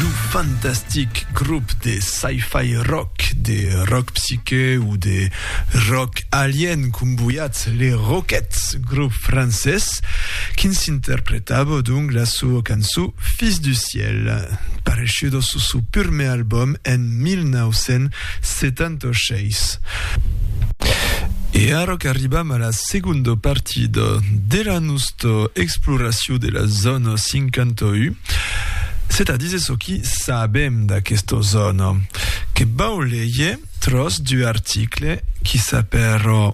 Lo fantastic grop de sci-fi rock, de rock psyché o de rock alien comboiat Les Roquettes, grop francés, quins interpretava donc la soa cançó Fils du ciel, pareshuda sus su purmé album en 1900. 76. E ara qu'arribam a la segonda partida de la nosta exploracion de la zòna 51, se tà díser çò qui sabem d'aquesta zòna, que vau léger tròç d'u article qui s'apèra.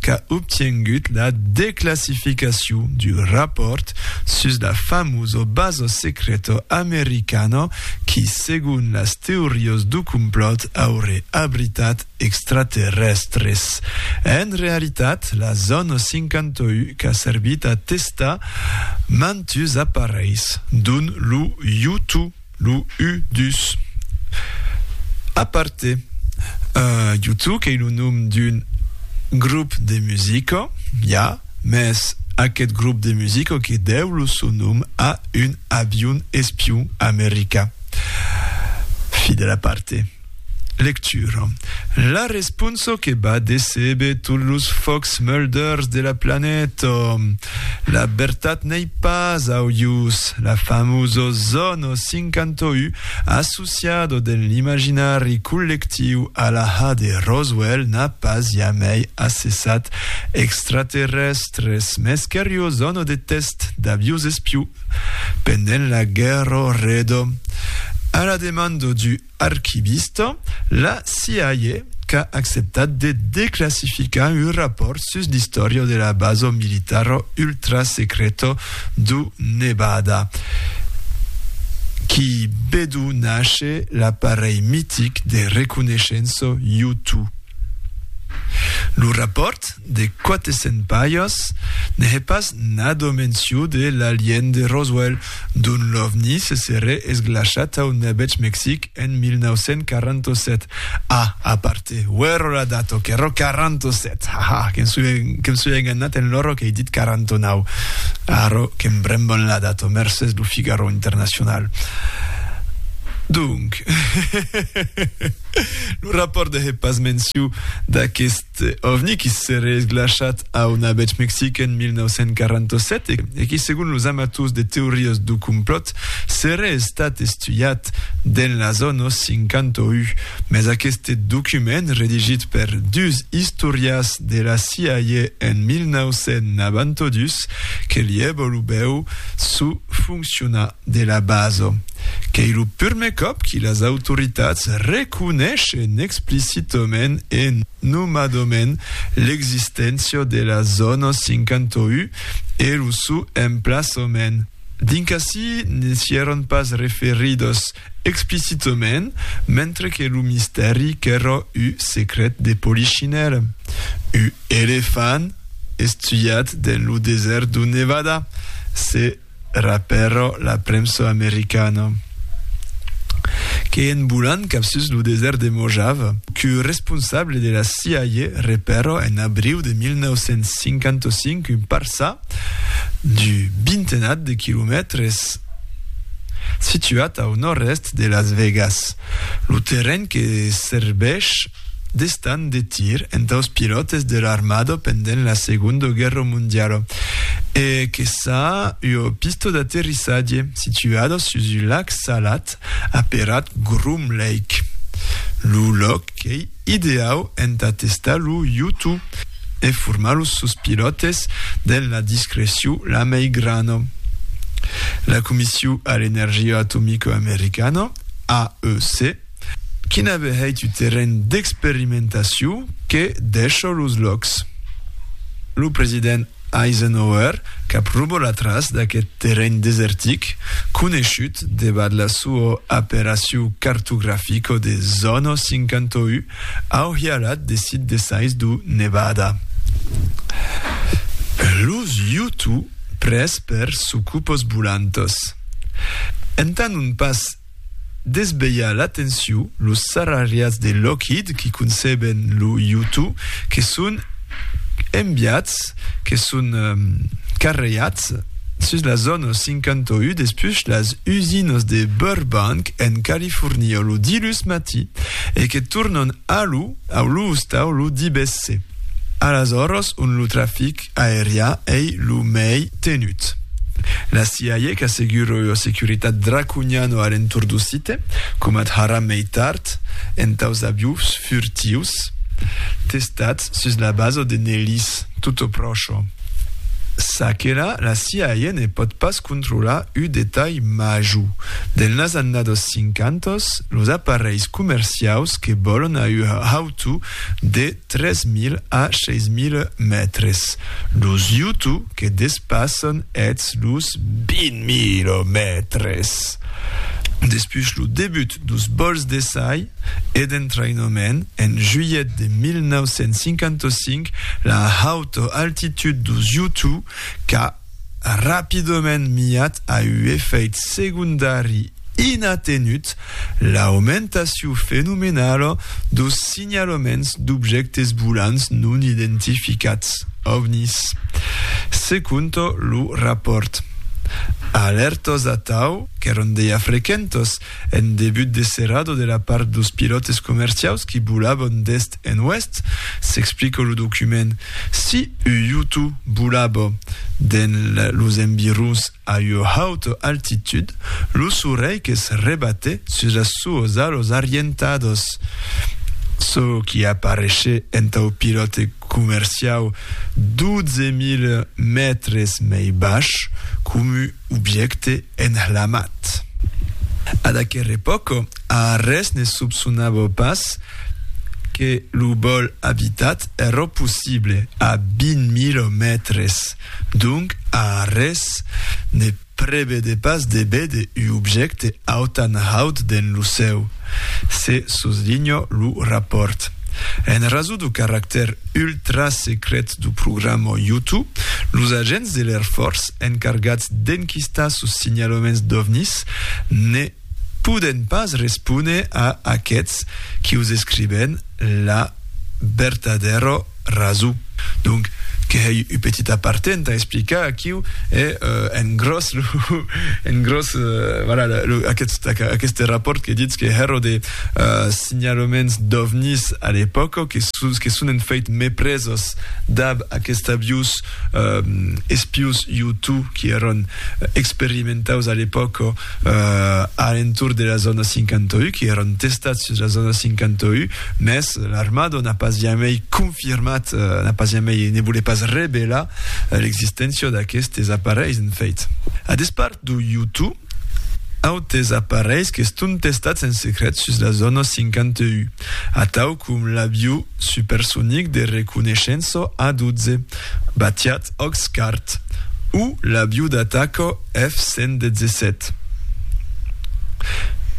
qu'a obtiengut la declassificacion du rapòrt sus la famoso baso secreto americano qui, segon las teorios du complòt, auré abritat extraterrèstres. En realitat, la Zòna 51 qu'a servit a testar mantus aparelhs, dont lo U-2. Lo U dus. Aparte, U tu qu'ei lo nom d'un grop de musica, ja, mès aqueth grop de musica que deu lo son nom a un avion espion america. Fi de l'aparte. Lectura La responso que va decebe tot los fòcs murders de la planeta. La bertat n'ei pas au ius. La famós ozono 51 associado den l'imaginari collectiu a la ha de Roswell n'a pas jamei assessat extraterrèstres, mes qu'eri ozono de test d'aviós espiu pendent la guèrra redo. A la demando du Archivista, la CIA qu'a acceptat de declassificar un rapòrt sus l'istòria de la basa militara ultrasecreta du Nevada, qui bedó nàsher l'aparelh mitic de reconeishença U-2. Lo rapòrt De quate sent paias, ne hè pas nado menciu de l'alien de Roswell, dont l'ovni se serè esglachat au Nebetz Mexic en 1947. A, a parte, uèro la data, ok, ero 47, ha ha, que me soi enganhat en l'oro qu'ei dit 49. Arro que me bremban la data, mercés lo Figaro Internacional. Donc, lo rapòrt ne hè pas menciu d'aqueste. Este ovni qui seré esglachat a una bèth Mexic en 1947 e qui segon los amators de teorias do complòt seré estat estuiat dens las annos 51, mès aqueste document redigit per dus istorias de la CIA en 1992 que lié volubèu suffonccionar. de la baso, qu'ei lo purme còp qui las autoritats reconeishen explicitament e nomadament l'existéncia de la zòna 51 e lo sou emplaçament, dins qu'ací ne sièron pas referidos explicitament, mentre que lo mistèri qu'èra u secret de Polichinèl, u elefant estuiat dens lo desèrt dun Nevada, se. Era pèro la premsa americana, que en volant cap sus lo desèrt de Mojave, que responsable de la CIA repèro en abriu de 1955 un parça d'u bintenat de quilomètres situat au nòrd-èst de Las Vegas, lo terren que serveish d'estand de tir entaus pilòtes de l'armada pendent la Segonda Guèrra Mondiala e que s'a ua pista d'aterrissatge situada sus un lac salat aperat Groom Lake. Lo lòc qu'ei ideau entà testar lo Yutu e formar los sos pilòtes dens la discrecion la mei grana. La Comission a l'Energia Atomica Americana, AEC, Quina behèit un terren d'experimentaciu que dèsho los lòcs. Lo president Eisenhower cap rubo la tras d'aqueth terren desertic, coneishut debat la suo aperaciu cartografico de Zono 51 au hialat de Sid de Sais du Nevada. Los Youtoo pres per sucupos bulantos. Entà non pas desvelha l'atenciu los sarrariats de Lockheed qui conceben lo U-2 que son enviats, que son carreats sus la zòna 51 despús las usinas de Burbank en California lo dilhus matí e que tornan a lo ostau lo divesse a las oras ont lo trafic aerià ei lo mei tenut. La CIA qu'assegura ua securitat draconiana a l'entorn do site, coma d'ara mei tard, entaus aviós furtius testats sus la basa de Nellis, tutto pròcho. Ça que la, la CIA ne pòt pas controlar uu detalh major, delnas annados cinquantos, los aparelhs comerciaus que vòlon a ua hautú de 3.000 a 6.000 mètres, los Yutu que despassan eths los 20.000 mètres. Despús lo debut dos vòls d'essai e d'entraïnament en julhet de 1955, la hauta altitud dos Yutu qu'a rapidament miat a uu efèit segondari inatenut, l'aumentaciu fenomenala dos signalaments d'objèctes volants non identificats, ovnis. Se conta lo rapòrt, alèrtas atau qu'èran dejà frequentas en debut de serada de la part dos pilòtes comerciaus qui volavan d'èst En oest, s'explica lo document, si ua iuto bolava dens los environs a ua hauta altitud, lo solelh que's rebate sus las suas alas arrientadas, çò qui apareishe entau pilòte comerciau 12.000 mètres mei baish, coma objècte Enhlamat. Ad aquer epòca, a arrés ne sopsonava pas que lo vòl abitat èra possible a 20 mila mètres, donc a arrés ne prevede pas de véder u objècte autan haut dens lo cèu, se soslinha lo rapòrt. En rason du caractèr ultra-secret du programa Yutu, los agents de l'Air Force encargats d'enquistar sos signalaments d'ovnis ne poden pas respóner a aqueths qui os escriben la vertadèra rason. Donc, que hèi un petit aparté entà explicar aquiu e en gròs lo en gròs voilà lo aquest aqueste rapport que ditz que hèro de signalaments d'ovnis a l'epòca que sus que son en fèit mepresos dab aquesta vius espius Hutu qui èran experimentaus a l'epòca a l'entorn de la zòna 51, qui èran testats sus la zòna 51, mès l'armada n'a pas jamei confirmat, n'a pas jamei, ne volé pas revelar l'existéncia d'aquestes aparelhs, en fèit. A despart d'u Hutu, Autes aparelhs qu'estón testats en secret sus la zòna 51, atau com l'avió supersonic de reconeishença A-12, batiat Oxcart, o l'avió d'ataca F-117.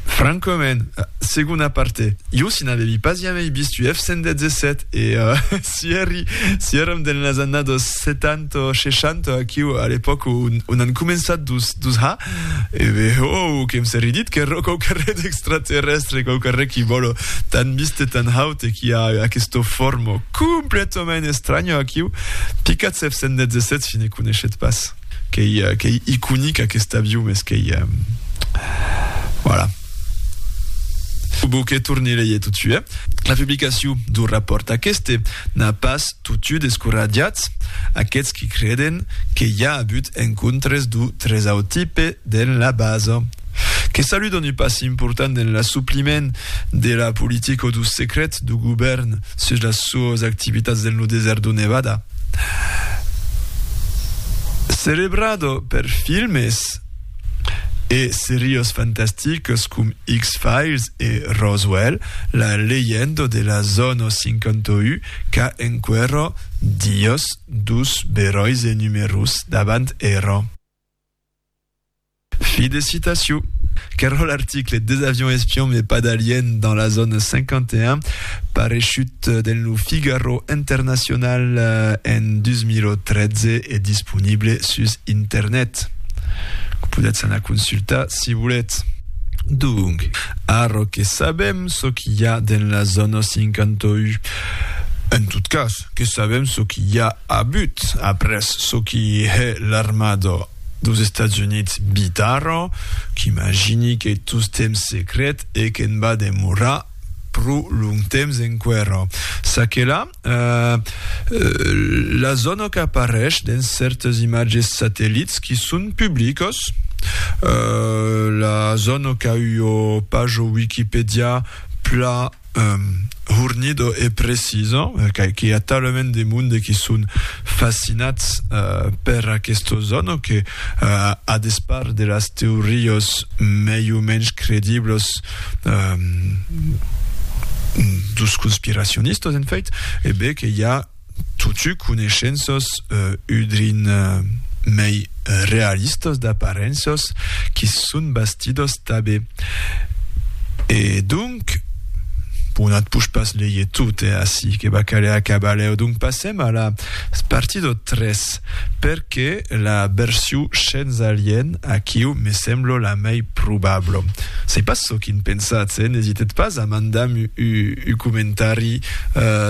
Francament, segona parte, jo si n'avevi pas jamei vist u F-117 e si èri, si èram dens las annadas 70, 1960, aquiu, a l'epòca on an començat dus, dus ha, e ve, oh, que em serri dit que ro quauquarre d'extraterrestre, quauquarre qui vòlo tan mist e tan haut e qui a aquesto formo completament estranya aquiu, picat 717 si ne coneishet pas. Qu'ei, qu'ei iconic aquest avion, mes qu'ei... Voilà. Faut que torni leie totsuit, eh? La publicacion d'un rapòrt aqueste n'a pas Totiu descoratjats, aqueths qui creden que i a abut encontres d'u tresautipe dens la basa, que saludon u passi important dens l'assopliment de la politica o d'u secret d'u govèrn sus las suas activitats dens lo desèrt d'u Nevada. Celebrada per filmes e serias fantasticas com X-Files e Roswell, la leyenda de la Zona 51 Qu'a enquero Dios dus beròis e numerus davant ero. Fi de citaciu. Qu'ero l'article Des avions espions mais pas d'aliens dans la zone 51 pareishut dens lo Figaro International en 2013 e disponible sus internet. Podètz anar consultar si voletz. Donc, arro que sabem, çò qu'i a dens la zòna 51. En tot cas, que sabèm çò qu'i a a but après çò qu'i hè l'armada deus Estats Units bit ara, qu'imagini qu'ei tostemps secret e que'n va demorar pro longtemps enqüèra. Ça que la. La zòna qu'apareish dens cèrtes imatges satellits qui son publicos. La zòna qu'a ua paja Wikipedià plan hornida e precisa, qu'i a talament de monde qui son fascinats per aquesta zòna que, a despart de las teorias mei o mensh crediblas, dos conspiracionistas, en fait, e bé que i a totu coneishenças udrin mei realistas d'aparenças qui son bastidas tabé. E donc, bon at push pas leie tot, eh, ací, que va caler acabar lèu, donc passem a la partida 3. perque la berciu shens alien aquiu me semblo la mei probablo. Sei pas çò quin pensatz, eh? N'esitetz pas a mandam u comentari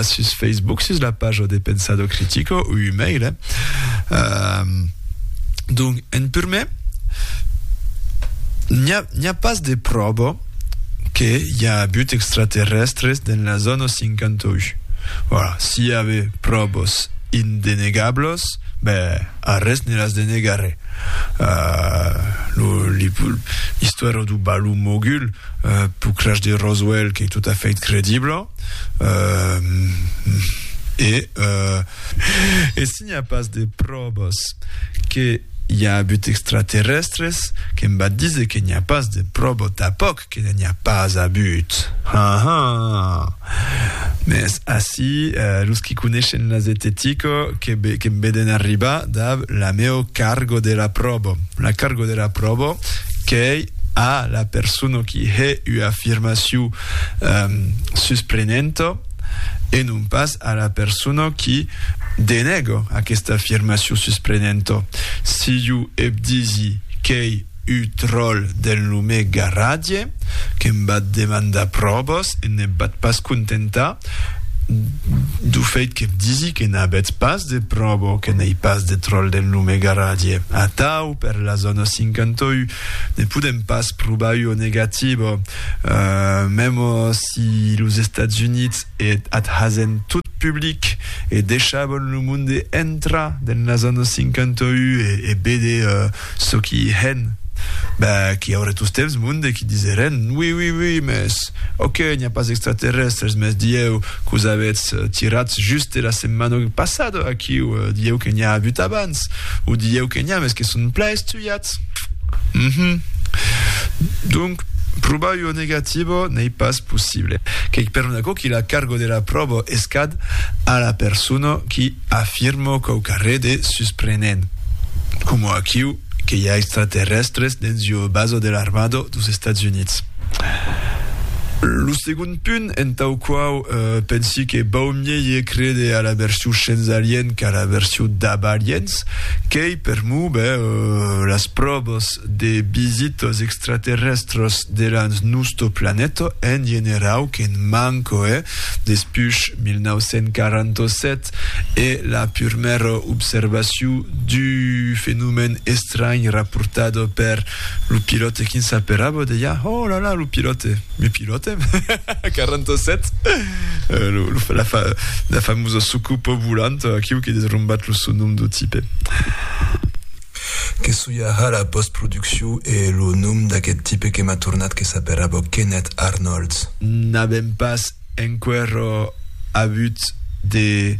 sus Facebook sus la paja de Pensado Critico u u mail, eh? Donc, en purmè, n'i a pas de pròbo. que i a abut extraterrèstres dens la zòna 58. Voilà, si i ave pròvas indenegablas, ben, arrés ne las denegarè. L'istòria du balon mogul pau crash de Roswell qu'ei tot a fait credibla e N'i a pas de pròvas que i a abut extraterrèstres, que'm va díser que n'i a pas de pròva tapòc que n'i a pas abut. Ha, ha! Mès ací, los qui coneishen la zetetica que'm veden arribar dab la meu cargo de la pròva. La cargo de la pròva qu'ei a la persona qui hè ua afirmacion susprenenta, e non pas a la persona qui denèga aquesta afirmacion susprenenta. Si jo ep disi qu'ei uu tròl d'en lomé Garradie, que'm bat demandar pròvas e n'ep bat pas contentar dau feit qu'ep disi que n'abetz pas de pròva que n'ei pas de tròl d'en lomé Garradie. Atau, per la zòna 51, ne podèm pas provar ua negativa, mèmos Si los Estats Units et ath hasen tot public e deishabon lo monde entrar dens las annos 51 e béder çò qui i hèn, ben qu'i aurè tostemps monde qui diserèn, oui, oui, oui, mès ok, n'i a pas extraterrèstres, mès dieu qu'os avètz tirats juste la setmana passada aquiu, dieu que n'i a avut abans, o dieu que n'i a mès que son plan estuiat. Cat. Uhmm. Donc, probar ua negativa n'ei pas possible. Qu'ei per aquò que la carga de la pròva es cad a la persona qui afirma quauquarre de susprenent, coma aquiu que i a extraterrèstres dens ua basa de l'armada dos Estats Units. Lo segond. punt entau quau pensi que bau miéier créder a la version shens alien qu'a la version dab aliens, qu'ei per mo be las pròbas de bisitas extraterrèstras delans nosto planeta en generau qu'en manco hè despush 1947 e la purmèra observacion du fenomèn estranh raportada per Lo pilòte quin s'aperaba deia, Oh la la, lo pilòte! Me pilòte? 47. Lo, lo, la, fa, la famosa sucupa volant, aquiu que des rombat lo son nom do tipe. Que soiarà la postproduccion e lo nom d'aqueth tipe que m'a tornat que s'aperaba Kenneth Arnolds? N'avèm pas Enquerò abut de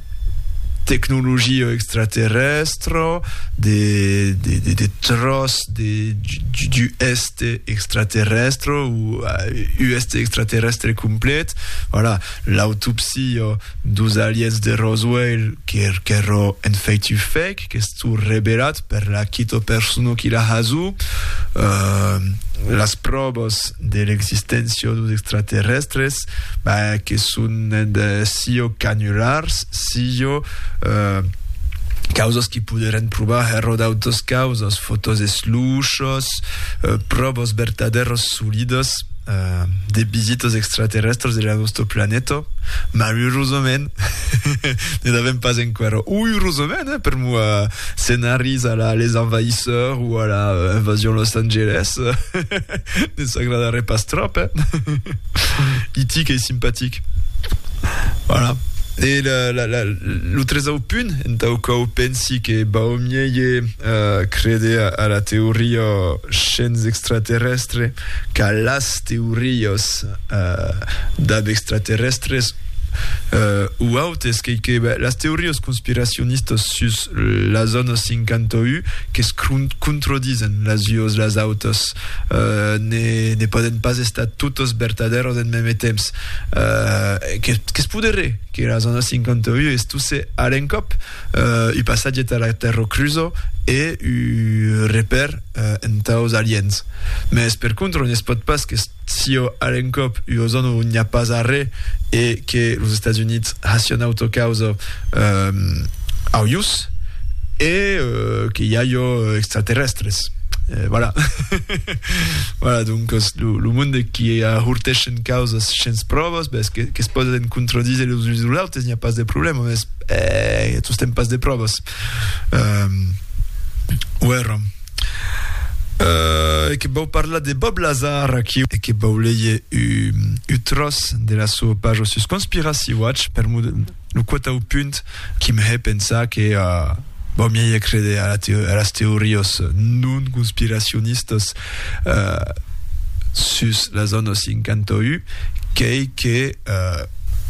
tecnologia extraterrèstra, de tròç d'uèste extraterrèstra o uèste extraterrèstre complet. Voilà, l'autopsia dos aliens de Roswell qu'èra en fèit un fake. qu'estó reberat per la quito persona qui la hasó, las pròvas de l'existencia dos extraterrèstres, ben, que son sió canulars, sió causas qui poderén provar hèr o d'autas causas, fotòs esluchas, pròvas vertadèras solidas de visitas extraterrèstres de la nosta planeta, malurosament, Ne n'avèm pas enqüèra. Ui, erosament, eh, per moi, scenaris a la Les Envahisseurs o a la Invasion Los Angeles, ne s'agradarè pas tròp, eh? E.T. qu'ei simpatic. Voilà. E la, la, la, lo tresau punt entau quau pensi que bau mieje uh, creder a, a la teoria shens extraterrestre qu'a las teorias dab extraterrèstres o autes, qu'ei que las teorias conspiracionistas sus la zòna 51 que's controdisen las uas las autas, ne pòden pas estar totas vertadèras en mème temps. Que's poderé que la zòna 51 estusse a l'encòp un passatge tà la Tèrra Crusa e un repèr entaus aliens. Mès per contra, ne es pòt pas que Sio al encòp ua zòna on n'i a pas arrè e que los Estats Units hasián autocausa au ius e que i a jo extraterrèstres. Voilà. voilà, doncas lo monde qui ahorteschen causas shens pròvas, bes que se pòden contradíser los uns los autes, n'i a pas de problèma, mes tostemp pas de pròvas. Uèra. Uh, e que vau parlar de Bob Lazar aquí e que vau leie u, u tros de la sua paja sus Conspiracy Watch per mu lo quatau punt qui me he pensar que uh, vau miei crede a, la teo a las teorias non conspiracionistas uh, sus la zona 51 qu'ei que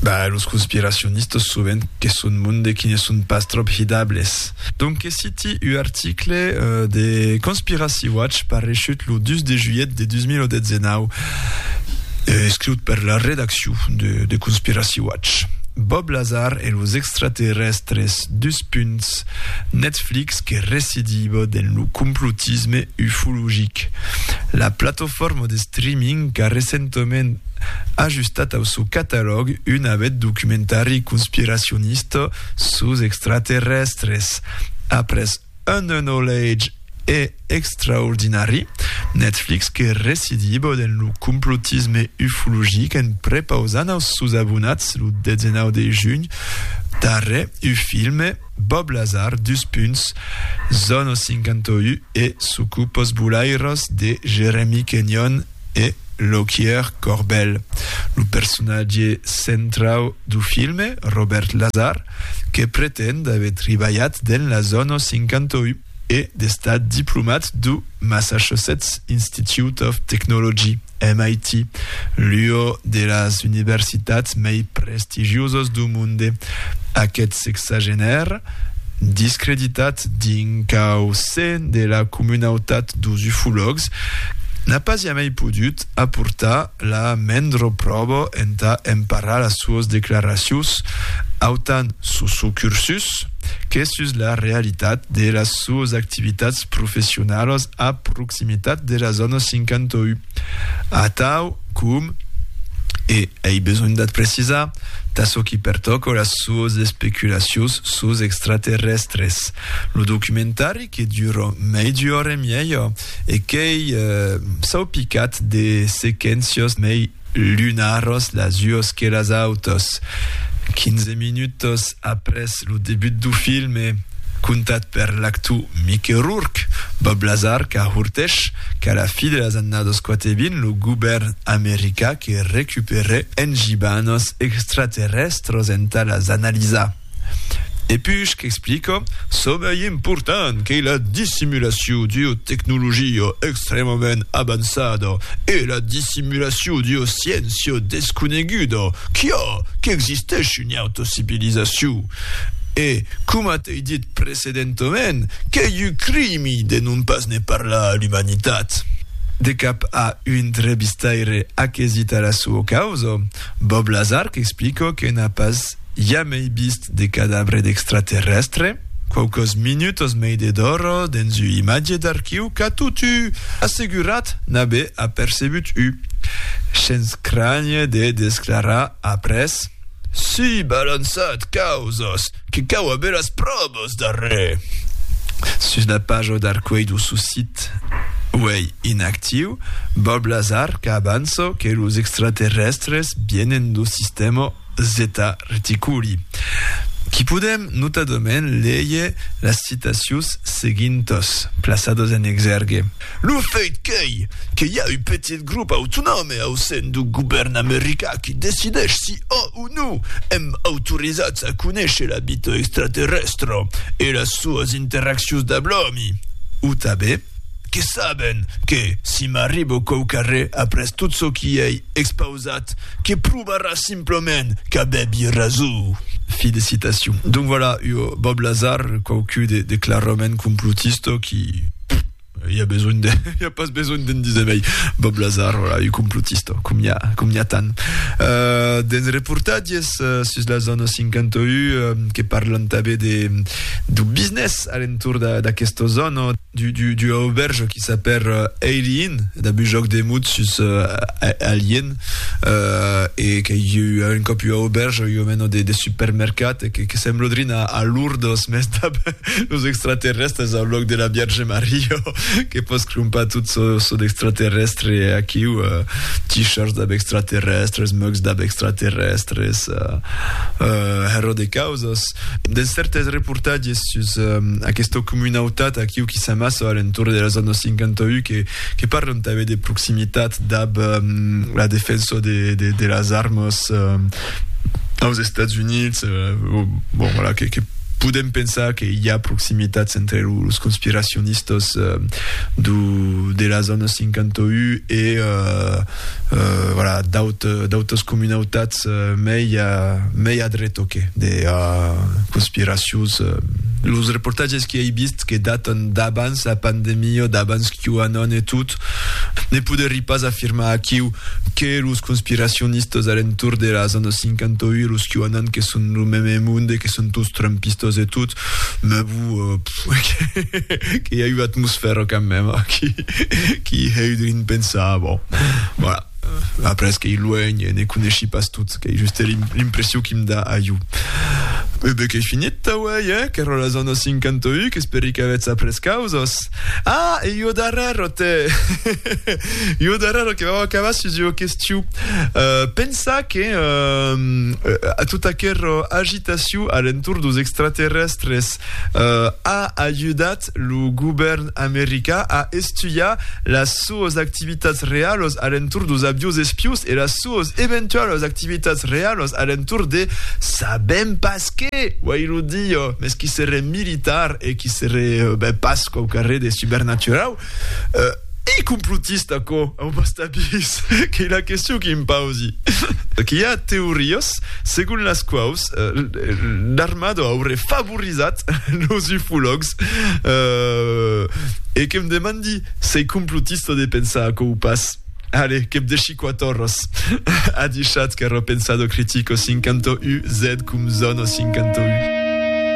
Bah, los conspiracionistas sovent que son monde qui ne son pas tròp hidables. Donque citi u article de Conspiracy Watch pareishut lo 2 de julhet de 2019, escriut per la redaccion de Conspiracy Watch. Bob Lazar e los extraterrèstres, dus punts, Netflix que residiva dens lo complotisme ufologic. La platofòrma de streaming qu'a recentament ajustat au sò catalòg un avèth documentari conspiracionista sus extraterrèstres. Après Un Unolhage e Extraordinari, Netflix que recidiba dens lo complotisme ufologic en prepausant aus sòus abonats lo 19 de junh darrè u filme Bob Lazar, dus punts, Zona 51 e Sucupos Bolaires de Jeremy Kenyon, e Lockyer Corbell, lo personatge centrau du filme, Robert Lazar, que pretend d'aver tribalhat dens la zòna 51 e d'estat diplomat du Massachusetts Institute of Technology, MIT, l'ua de las universitats mei prestigiosas du monde. Aqueth sexagenaire, discreditat dins cau sen de la comunautat dos ufològs, n'a pas jamai podut aportar la mendro pròba entà emparar las suas declaracions autant sus su cursus que sus la realitat de las suas activitats professionalas a proximitat de la zòna 51. Atau, com, e ei besonh d'ath precisar, tà çò qui pertòca las sues especulacions sus extraterrèstres, lo documentari que dura mètz ora e mièja e qu'ei saupicat de sequéncias mei lunaras las ues que las autas, 15 minutas Après lo debut du film e contat per l'actor Mickey Rourke, Bob Lazar qu'ahortèch qu'a la fi de las annadas 420 lo govèrn americà que recuperè en gibanos extraterrèstros entà las analisar. E puish qu'explica, çò mai important qu'ei la dissimulacion d'ua tecnologia extrèmament avançada e la dissimulacion d'ua sciéncia desconeguda, quia, qu'existèshi. Neotocivilizacion e, coma t'ei dit precedentament, qu'ei un crimi de non pas ne parlar a l'umanitat. De cap a un drebistaire aquesit a la sua causa, Bob Lazar qu'explica que n'a pas jamei vist de cadabre d'extraterrèstre, quauquas minutas mei de d'ora dens ua imatge d'archiu qu'a totu assegurat n'aver apercebut un. Shens crànher de desclarar Après, si balançat causas que cau aver las pròvas darrè. Sus la paja d'Arcueil dau sò sit uèi inactiu, Bob Lazar qu'avança que los extraterrèstres vienen dau sistèma Zeta Reticuli. Qu'i podèm notadament léger las citacions seguintas, plaçadas en exèrgue. Lo fait qu'ei que i a un petit grop autonòme au sen du govèrn americà qui decideish si ò o no èm autorizats a conéisher la vita extraterrèstra e las soas interaccions dab l'òmi, o tanben que saben que si m'arribo quauqu'a re après tot çò qui ei expausat que provarà simplament qu'avèbi rason. Fi de citacion. Donc voilà, ua Bob Lazar, quauqui de clarament complotista qui. il y a besoin de, il y a pas besoin d'en dire mai. Bob Lazar, voilà, un complotista, com n'hi ha, com n'hi ha tant. Euh, dens reportatges euh, sus la zona 51 euh, que parlan també de, du business a l'entour d'aquesta zona, du, du, du auberge qui s'appelle euh, Alien, d'un joc de mut sus euh, Alien, e que i ua un còp ua auberge, ua mena de, de supermercat, e que, que semblodrin a, a Lourdes, mès dab los extraterrèstres au lòc de la Vierge Maria, que pòs crompar tot çò, çò d'extraterrèstre aquiu, t-shirts dab extraterrèstres, mugs dab extraterrèstres, hèro de causas. Dens cèrtes reportatges sus aquesta comunautat aquiu qui s'amassa a l'entorn de las annaus 51, que, que parlan tanben de proximitat dab la defensa de las armas aus Estats Units, bon, voilà, que podem pensar que i a proximitats entre los conspiracionistas de la zòna 51 e, voilà, d'autas comunautats mei a dreta que de conspiracions. Los reportatges que ei vist, que datan d'abans la pandemia, d'abans QAnon e tot, ne poderí pas afirmar aquiu que los conspiracionistas a l'entorn de las anna's 50 ui los QAnon que son lo meme monde e que son tots trumpistas e tot, me bu, que i a ua atmosfèra quand meme qui heu de l'inpensar, bon, voilà. Après qu'ei luènh e ne coneshi pas tot, qu'ei juste l'impression qui'm da a jo. E be qu'ei finit, tauèi, eh? Qu'èra la zòna 51, qu'esperi qu'avetz après causas. Ah, e jo darrèr, otè! jo darrèr, que vau acabar sus ua question. Uh, pensa que uh, a tota aquera agitacion a l'entorn dos extraterrestres uh, a ajudat Est, lo govèrn americà a estudiar las suas activitats realas a l'entorn dos aviós espiós e las suas eventualas activitats realas a l'entorn de sabèm pas qué, uèi lo dia, mès qui seré militar e qui seré ben pas quauquarré de supernaturau. Ei complotista aquò au basta pis qu'ei la question qui em pausi. Qu'i a teorias segon las quaus l'armada aurè favorizat los ufològs e que'm demandi s'ei complotista de pensar aquò o pas. Allez, que'm deshi quatòrras. A dichat qu'èra pensado critico 51 zed com zòna 51.